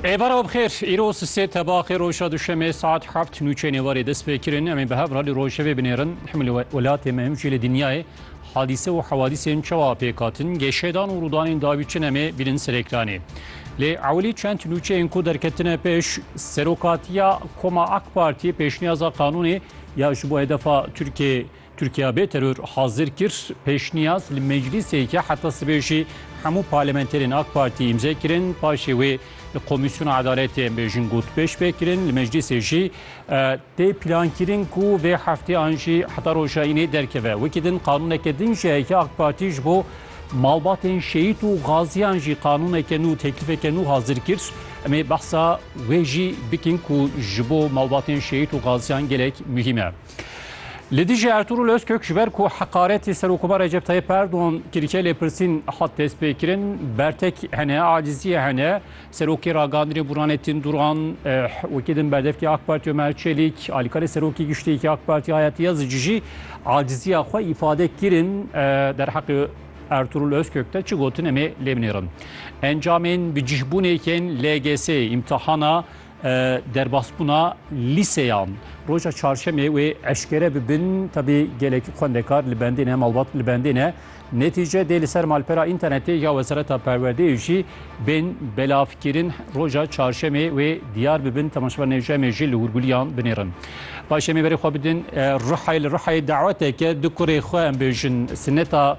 Êvara bixêr, îro sisê tebaxê roja duşemê saet heft nûçeyên êvarê dest pê kirin. Em ê bi hev re li rojevê binêrin. Him li welatê me him jî li dinyayê hadîse û hewadîsên çawa pêk hatin, gêşedan û rûdanên dawî çin em ê bînin ser ekranê. Lê ewilî çend nûçeyên ku derketine pêş, serokatiya Koma AK Partiyê pêşniyaza qanûnê ya ji bo hedefa Tirkiyê Tirkiya bê teror hazir kir, pêşniyaz li meclîsê ye, heta sibê jî hemû parlamenterên AK Partî îmze kirin, paşê wê li Komîsyona Edaletê em bêjin gotpêş pê kirin, li meclîsê jî tê plankirin ku vê heftê an jî heta roja înê derkeve. Wekî din qanûneke din jî heye AK Partî ji bo malbatên şehîd û gaziyan jî qanûneke nû, teklîfeke nû hazir kir. Em ê behsa wê jî bikin ku ji bo malbatên şehîd û gaziyan gelek muhîm e. Li dijî Ertûrûl Ozkök ji ber ku heqaretê Serokomar Recep Tayyip Erdogan kirike lêpirsîn hat destpêkirin, bertek hene, aciziyê hene. Serokê Ragihandinê Burhanettin Duran, wekî din berdevkê AK Partî Omer Çelîk, alîkarê Serokê Giştîyekî AK Partî Hayati Yazıcı jî aciziya xwe îfade kirin. Derheqê Ertûrûl Ozkök de çi gotin em ê lê binêrin. Encamên bi cîhbûnê yên LGS'ê, îmtihana Derbasbûna lîseyan roja çarşemê wê eşkere bibin tevî gelek xwendekar li bendê ne malbat li bendê ne netîce dê li ser malpera înternetê ya wezareta perwerdeyê jî bên belavkirin roja çarşemê wê diyar bibin temaşeber nêje em ê jî li hûrgulîyan binêrin Baş em ê berê xwe bidin Rihayê li Rihayê daweteke du kurê xwe em bêjin sineta